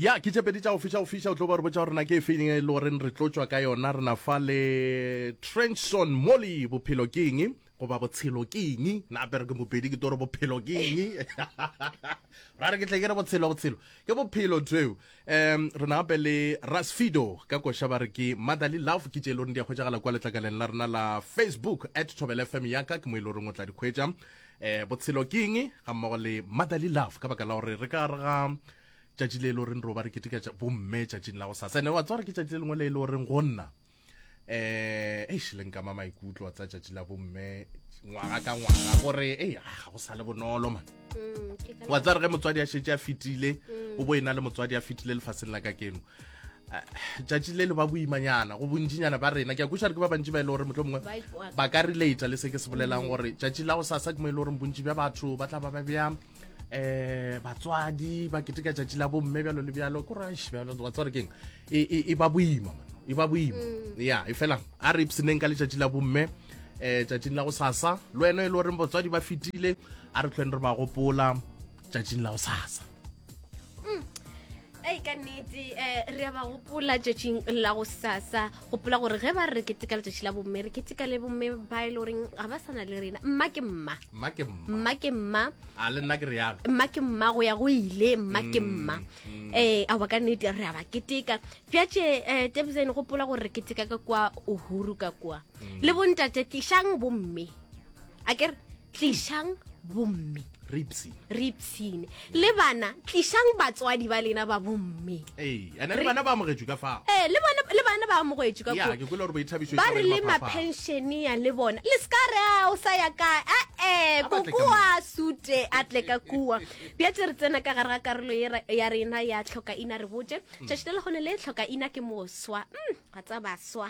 ya ke tše pedi tša go fiša go fiša o tlo ba re botsa gore na ke e feng e le goreng re tlotšwa ka yona re na fa le trenchson molly bophelo ke eng goba botshelo ke eng na pere ke mopedi ke toro bophelo ke eng ra re ke tle ke re botshelo botshelo ke bophelo tseo um re na gape le rasfido ka koša ba re ke motherly love ke tše e le goreng di a hwetšagala kwa letlakaleng la rena la facebook at tobel fm yaka ke mo e le goreng o tla di hwetša eh botshelo ke eng ga mmogo le motherly love ka baka la gore re ka re ga tšatši le e le goreng roba re keteka bomme tšatšing la go sasa ene wa tsware ke tšatši le lengwe le e le goreng go nna eh e šileng ka ma maikutlo tsa tšatši la bomme ngwaga ka ngwaga gore e ga go sa le bonolo man mm, wa tsare ge motswadi a šetse a fetile mm. o bo e na le motswadi a fetile lefatsheng la ka keno tšatši le le ba boimanyana go bontšinyana ba rena ke a kušare ke ba bantši ba e le gore motlho mongwe ba ka relata le se ke se bolelang gore tšatši la go sasa ke mo e le gore bontši bja batho ba tla ba ba bjang eh batswadi ba keteka tšatši la bomme bjalo le bjalo ko rash bjalo wa tswa re keng e ba boima e ba boima mm. ya e fela a re ipseneng ka letšatši la bomme eh tšatšing la go sasa le wena e le goreng batswadi ba fetile a re tlhweng re ba gopola tšatšing la go sasa mm. ei ka nnete um re a ba gopola tšatšing la go sasa gopola gore ge ba re keteka letšatši la bomme re keteka le bomme ba e le goreng ga ba sana le rena mma ke mma mma ke mma mma ke mma a le nna ke re yalo mma ke mma go ya go ile mma ke mm, mma um a ba ka nnete re a ba keteka bjatše um eh, tebsane gopola gore re keteka ka kwa uhuru ka kwa mm. le bontate tlišang bomme a ke re tlišang bomme re ipsine re ipsine le bana tlišang batswadi ba lena ba bomme ee ene le Re- bana ba amogetswe ka fao ee le bona le bana ba amogetswe ka ya koo. ke kwele gore boithabišo ba re le mapenšenia le bona le se ka re a o sa ya kae ae A batle ka koko mo. a sute a tle ka kua bja tse re tsena ka gare ga karolo ye ra- ya rena ya tlhoka ina re botse tšatši le legone le tlhoka ina ke moswa Mm, ga tsa baswa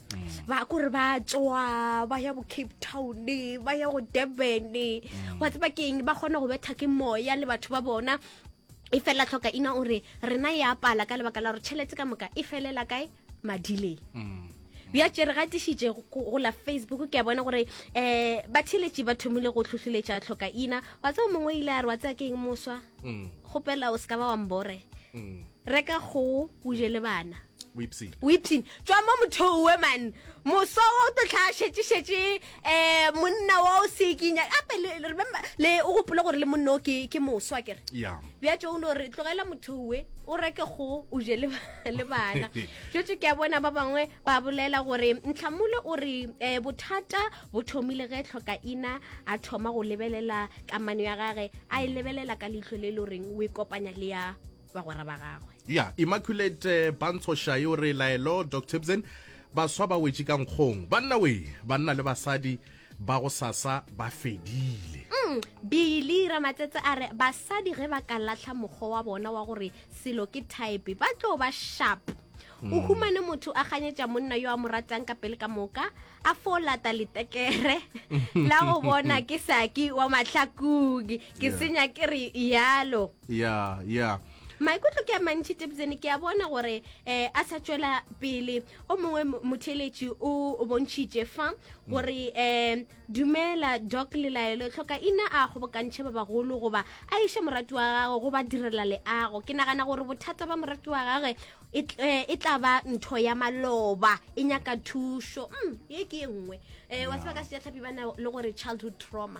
mm. ba kore ba tswa ba ya bo cape town ba ya go durban mm. wa tseba ke eng ba kgone go betha ke moya le batho ba bona e fela tlhoka ina o re rena e apala ka lebaka la gore tšhelete ka moka e felela kae madileng mm. bja tše re gatišitše go la facebook ke a bona gore um ba theletše ba thomile go tlhohleletša tlhoka ina wa tseo mongwe ile a re wa tsea ke eng moswa mm. kgopela o se ka ba wa mbore mm. reka kgogo o je le bana wipsin tswa mo mothong we man moso wa o totlha šetšešetše um monna wa o sekinya gape remember le o gopole gore le monna o ke moso a kere bja tso o no re tlogela motho we o reke go o je le bana jotse ke a bona ba bangwe ba bolela gore ntlhamole o re um bothata bo thomile ge tlhoka ina a thoma go lebelela kamano ya gage a e lebelela ka leitlho le e le goreng o e kopanya le ya bagwera ba gagwe ya yeah, immaculate eh, bantshošae o re laelo doc tipson baswa ba wetše ka nkgong banna we banna le basadi ba go sasa ba fedile mm, bile ramatsetse a re basadi ge ba ka latlha mokgwa wa bona wa gore selo ke type ba tlo ba sharp mm. o humane motho a ganyetša monna yo a mo ratang ka pele ka moka a fo lata letekere la go bona ke saki wa mahlakung ke senya ke re yalo ya ya maikutlo ke a mantši tebzene ke a bona gore um a sa tšwela pele o mongwe motheletši o bontšhitše fa gore um dumela doc lelaelo e tlhoka ina a kgobokantšhe ba bagolo goba a iše morati wa gagwe go ba direla leago ke nagana gore bothata ba morati wa gagwe e, e, e tla ba ntho ya maloba e nyaka thušo mm, ye ke e nngwe um wa seba ka sejatlhapi ba na le gore childhood trauma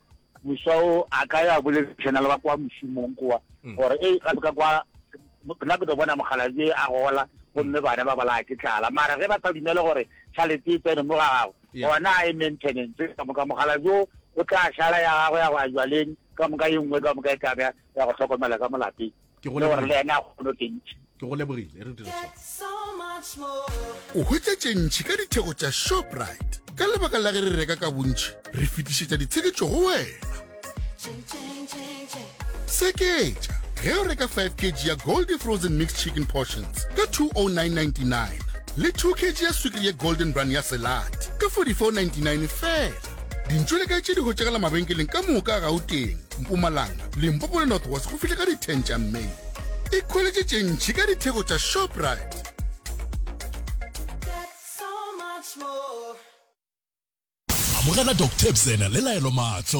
moswa o a ka ya boledišana le ba kwa mošomong kwa mm. gore e ga ka kwa nna ke tlo bona mogalaje a gola gomme mm. bana ba balaya ke tlala mara ge ba sa dumele gore tšhalete e tsene mo ga gago gona a e maintenance ka moka mogalajo o tla šala ya gago ya go a jwaleng ka moka ye nngwe ka moka e tlabe ya go tlhokomela ka molapeng ke go lebogile le ena go lo teng ke go lebogile re dire so o hwetša tše ntšhi ka ditheko tša shoprite ka lebaka la ge re reka ka bontšhi re fetišetša ditsheketšo go wena seketša ge o reka 5 kg ya goldy frozen mixed chicken portions ka 20999 le 2 kg ya swikiri ye golden run ya selate ka 4499 fela dintšo le kae tše di hotšegela mabenkeleng ka moka a gauteng mpumalanga limpopo le north west go fihle ka di-10 tša may e kgoletše tše ntšhi ka ditheko tša shoprite amogela dr bzena le laelo maatlo